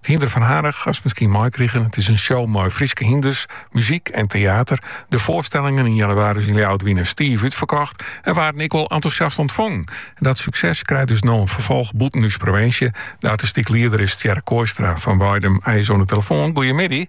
Hynder fan Harich hast miskien meikrigen. It is in show mei Fryske hynders, muzyk en teater. De foarstellingen yn jannewaris yn Ljouwert wiene stif útferkocht en waarden ek wol entûsjast ûntfongen. Dat sukses krijt dus no in ferfolch bûten ús provinsje. De artistyk lieder is Tjerk Kooistra fan Weidum. Hy is oan de telefoan. Goeiemiddei.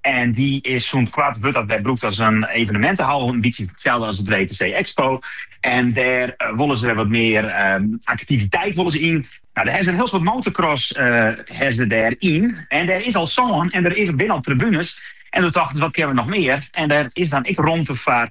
En dy is sûnt koart wurdt dat wer brûkt as in evenemintenhal, in bytsje itselde as it WTC Expo. En dêr eh, wolle se wer wat mear ehm, aktiviteit wolle se yn. Nou, dêr ha se in hiel soad motorcross ha se dêryn. En der is al sân en der is, binne al tribunes. En doe tochten se, wat kinne we noch mear? En dêr is dan ek romte foar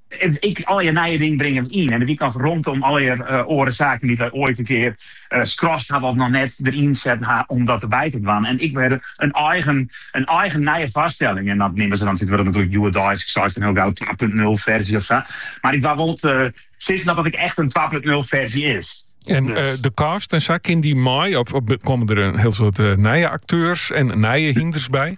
Ek allegear nije dingen bringe we yn en dat wy kinne rûnom allegear oare saken dy't we oait in kear skrast hawwe of noch net deryn set ha om dat derby te dwaan en ek wer in eigen in eigen nije foarstelling en dat neame se dan it wurdt natuerlik hjoeddeisk ek seist dan hiel gau twa punt nul ferzje of sa mar ik wol wol sizze dat dat ek echt in twa punt nul ferzje is. En eh, de cast en sa, kin dy mei? Of, of komme der in hiel soad eh, nije akteurs en nije hynders by?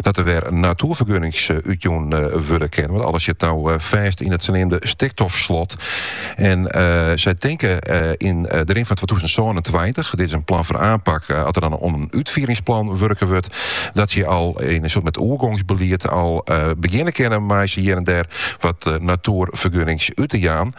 Dat der wer natoerfergunnings útjûn wurde kinne, want alles sit no fêst yn it saneamde stikstofslot. En sy tinke yn de rin fan twatûzen sânentweintich, dit is in plan fan oanpak as der dan oan in útfieringsplan wurke wurdt, dat sy al yn in soart mei oergongsbelied al begjinne kinne mei sa hjir en dêr wat natoerfergunnings út te jaan.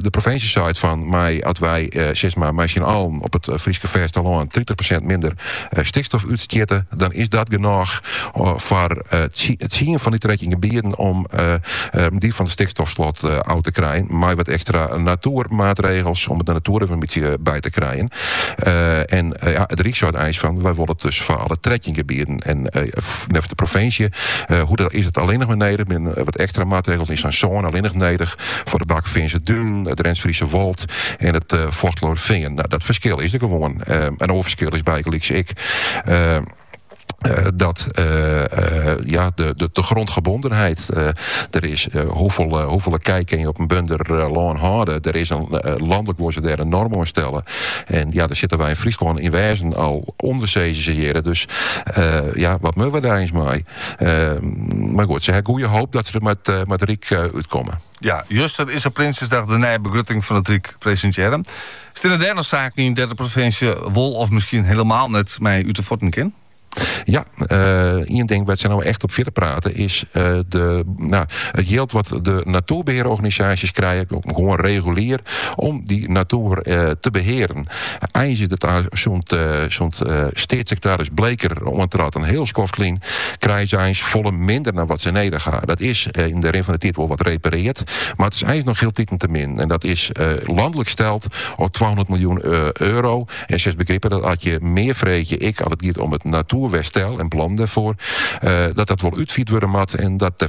De provinsje seit fan, mei as wy sis mar mei syn allen op it Fryske fêstelân tritich persint minder stikstof útstjitte, dan is dat genôch foar tsien fan dy trettjin gebieten om dy fan it stikstofslot ôf te krijen. Mei wat ekstra natoermaatregels om de natoer in bytsje by te krijen. En ja, it Ryk seit eins fan, wy wolle it dus foar alle trettjin gebieten. En neffens de provinsje is dat allinnich mar nedich, binne wat ekstra maatregels yn sa'n sône allinnich nedich foar de Bakkefeanster Dunen, it Drents-Friese Wâld en it Fochteloërfean. Nou, dat ferskil is der gewoan. Ehm, in oar ferskil is bygelyks ek ehm, eh, dat eh, eh, ja, de, de, de grondgebondenheid eh, der is, eh, hoefolle, eh, hoefolle kij kinne je op in bunder eh, lân hâlde? Der is in, eh, landelik wolle se dêr in noarm oan stelle. En ja, dêr sitte wy yn Fryslân yn wêzen al ûnder, sizze se hjirre. Dus eh, ja, wat moatte we dêr eins mei? Mar goed, se ha goeie hoop dat se der mei it Ryk út komme. Ja, juster is op Prinsjesdag de nije begrutting fan it Ryk presintearre. Steane dêr noch saken yn dêr't de provinsje wol of miskien hielemaal net mei út de fuotten kin? Ja, eh, ien ding wat se no echt op fierder prate is eh, de, no, it jild wat de natuerbehearorganisaasjes krije, gewoan regulier, om dy natuer eh, te behearen. Eins is it sa sûnt sûnt steatssekretarris Bleker oantraat in hiel skoft lyn, krije se eins folle minder dan wat se nedich ha. Dat is yn de rin fan de tiid wol wat repareard, mar it is eins noch hieltiten te min. En dat is lanlik steld al twahûndert miljoen euro. En se begripe dat as je mear freegje, ek as it giet om it natuerwerstel en plannen dêrfoar, dat dat wol útfierd wurde moat en dat de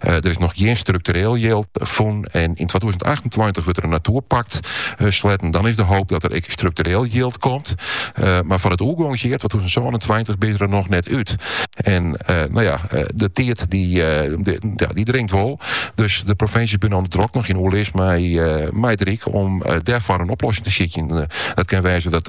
der is noch gjin struktureel jild fûn. En yn 2028 wurdt der in natuerpakt sletten. Dan is de hoop dat der ek struktureel jild komt. mar foar it oergongsjier 2027 binne se der noch net út. En nou ja, de tiid die, die dringt wol. Dus de provinsjes binne no drok noch yn oerlis mei, mei it Ryk, om dêrfoar in oplossing te sykjen. Dat kin wêze dat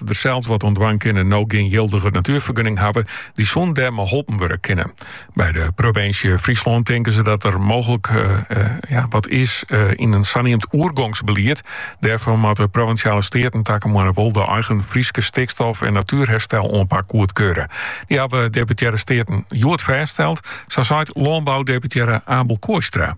dat der sels wat oan dwaan koene no gjin jildige natuerfergunning hawwe, dy soene dêr mei holpen wurde kinne. By de provinsje Fryslân tinke se dat der mooglik eh, eh, ja, wat is eh, yn in saneamd oergongsbelied. Dêrfoar moatte provinsjale steaten takemoarne wol de eigen Fryske stikstof en natuerherstel oanpak goedkarre. Die hawwe deputearre steaten hjoed fêststeld, sa seit lânboudeputearre Abel Kooistra.